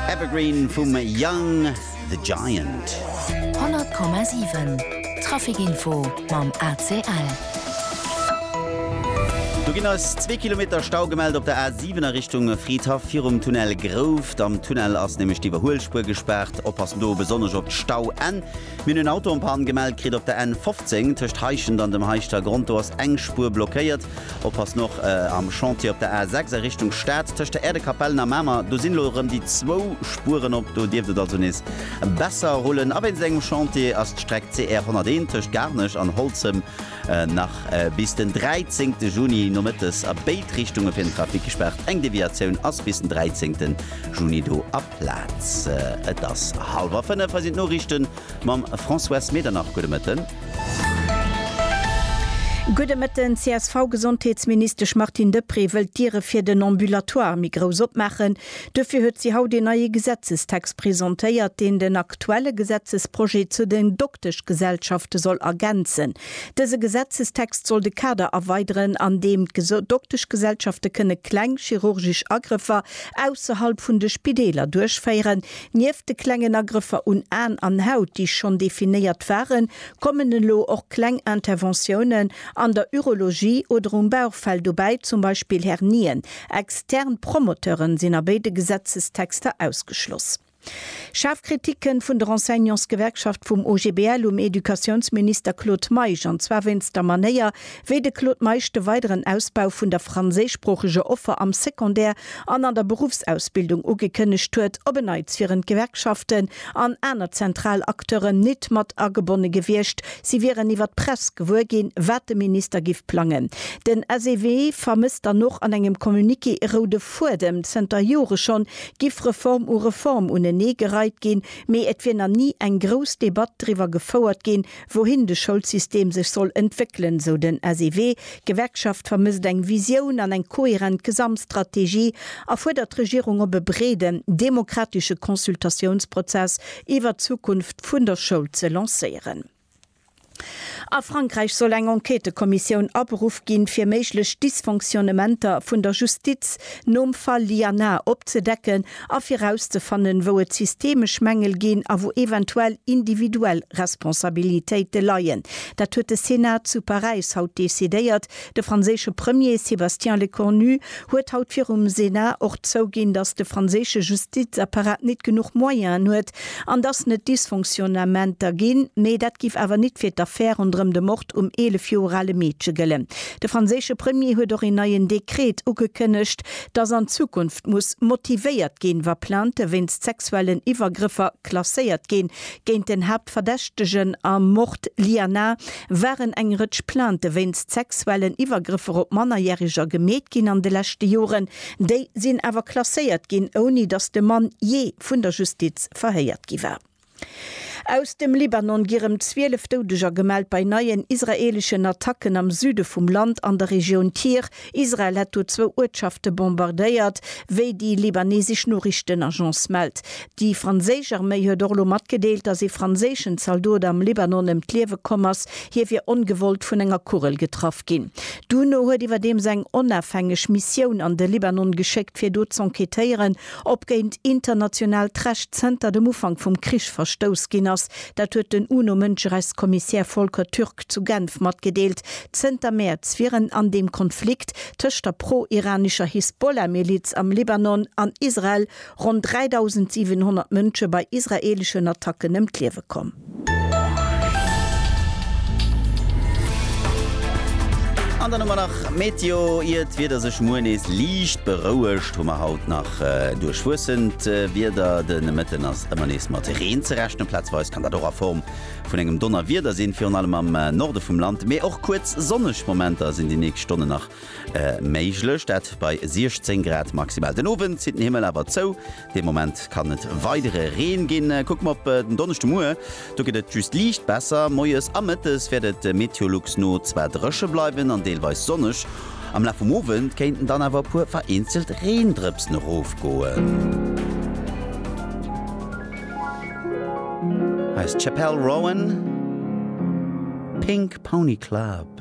Evergreen vum Young The Giant. 100,7 Trafikinfo mam ACL. Do ginn eis zwee Kilometer Stau gemellt op der A 7 a Richtung Fridhaff virum Tunnel Grouft. Am Tunnel ass nämlech d'Iwwerhuelspuer gespaart. Oppassen do besonnesch op d'Stauenn. Mir hunn en Auto en panne gemellt kritt op der N 15, tëscht Heischent an dem Haischter Grond. Do ass eng Spuer blockéiert. Oppassen och am Chantier op der A 6 a Richtung Stad, tëscht der Äerdekapellen a Mamer. Do sinn elo erëm déi zwou Spueren op. Do dierft et also nees besser rullen. A wéinst engem Chantier ass d'Streck CR 101 tëscht Garnech an Holzem nach bis den 13 Juni nomëttes a béid Richtunge fir den Trafic gespaart. Eng Deviatioun ass bis den 13 Juni do a. Plaz. Et ass hallwer 5, hei sinn d'Noriichten mam Françoise Medernach. Gudde Mëtten. Gudde Mëtten. D'CSV-Gesondheetsministesch Martine Deprez wëllt d'Diere fir den Ambulatoire méi grouss opmaachen. Duerfir huet si haut een neie Gesetzestext presentéiert, deen den aktuelle Gesetzesprojet zu den Dokteschgesellschafte soll ergänzen. Dëse Gesetzestext soll de Kader erweideren, an deem d'Dokteschgesellschafte kënne kleng chirurgesch Agrëffer ausserhalb vun de Spideeler duerchféieren. Nieft de klengen Agrëffer un Aen an Haut, déi schonn definéiert waren, kommen elo och kleng Interventiounen an der Urologie oder um Bauchfell dobäi, zum Beispill Hernien. Extern Promoteuren sinn a béide Gesetzestexter ausgeschloss. Schaarf Kritik kënnt vun der Enseignantsgewerkschaft vum OGBL um Educatiounsminister Claude Meisch, an zwar wéinst der Manéier, wéi de Claude Meisch de weideren Ausbau vun der franséischsproocheger Offer am Secondaire an an der Beruffsausbildung ugekënnegt huet. Op en Neits wieren d'Gewerkschaften an aner zentral Acteuren nit mat agebonne gewiescht. Si wieren iwwer d'Press gewuer ginn, wat de Minister giff plangen. Den SEW vermësst dann och an engem Communiqué e roude Fuedem. Zënter Jore schonn giff Reform u Reform unenee gereit ginn, mee et wier na ni eng grouss Debatt driwwer gefouert ginn, wouhin de Schoulsystem sech soll entwéckelen, sou den SEW. D'Gewerkschaft vermësst eng Visioun an eng kohärent Gesamtstrategie a fuerdert d'Regierung op, e breeden demokratesche Consultatiounsprozess iwwer d'Zukunft vun der Schoul ze lancéieren. A Frankräich soll eng Enquêtëkommissioun aberuff ginn, fir méiglech Dysfonctionnementer vun der Justiz nom Fall Liana opzedecken a fir rauszefannen, wou et systemesch Mängel ginn a wou eventuell individuell Responsabilitéite leien. Dat huet de Senat zu Paräis haut decidéiert, De franséische Premier Sébastien Lecornu huet haut virum Senat och zouginn, datt de franséische Justizapparat nit genuch Moyenen huet an datt net Dysfonctionnementer ginn. Mee dat giff awer nit fir d'Affär ronderëm de Mord um 11 Joer ale Meedche gëllen. De franséische Premier huet och een neien Dekret ugekënnegt, datt an Zukunft muss motivéiert ginn, wa Plaintë wéinst sexuellen Iwwergrëffer klasséiert ginn géint den Haaptverdächtegen am Mord Liana. waren eng Rëtsch Plainte wéinst sexuellen Iwwergrëffer op Mannerjäreger gemeet ginn an de leschte Joren. Déi sinn awer klasséiert ginn, ouni datt de Mann jee vun der Justiz verhéiert gi war. Aus dem Libanon gi rëm 12 Doudeger gemellt bei neien israeeleschen Attacken am Süde vum Land an der Regioun Tyr. Israel hätt do zwou Uertschafte bombardéiert, wéi déi libanesesch Noriichtenagence mellt. Déi franséisch Arméi huet och elo matgedeelt, datt ee franséischen Zaldot am Libanon ëm d'Liewe komm ass. Hie wier ongewollt vun enger Kugel getraff ginn. D'UNO huet iwwerdeems eng onafhängeg Missioun an de Libanon geschéckt, fir do z'enquêtéieren, ob géint internationaalt Recht zënter dem Ufank vum Krich verstouss ginn ass. Dat huet den UNO-Mënscherechtskommissär Volker Türk zu Genf matgedeelt. Zënter Mäerz wier en an deem Konflikt tëscht der pro-iranescher Hisbollah-Miliz am Libanon an Israel ronn 3.700 Mënsche bei israeeleschen Attacken ëm d'Liewe komm. An dann hu mer nach Meteo. Ier d'Wieder sech muer nees liicht berouegt, hu mer haut nach. Duerchwuessend Wieder de Mëtten ass ëmmer nees mat Reen ze rechnen. Plazweis kann dat och a Form vun engem Donnerwieder sinn, virun allem am Norde vum Land. Mee och kuerz sonneg Momenter sinn déi nächst Stonnen nach méiglech, dat bei 16 Grad maximal. Den Owend zitt den Himmel awer zou, dee Moment kann et weidere Reen ginn. Kucke mer op den Donneschdemuer, Do gëtt et just liicht besser. Moies a mëttes wäert et der Meteolux no zwar dréche bleiwen an deelweis sonneg. Am Laf vum Owend kéinten dann awer e puer vereenzelt Reendrëpsen erofgoen. Hei ass d'Chappell Rowan, Pink Pony Club.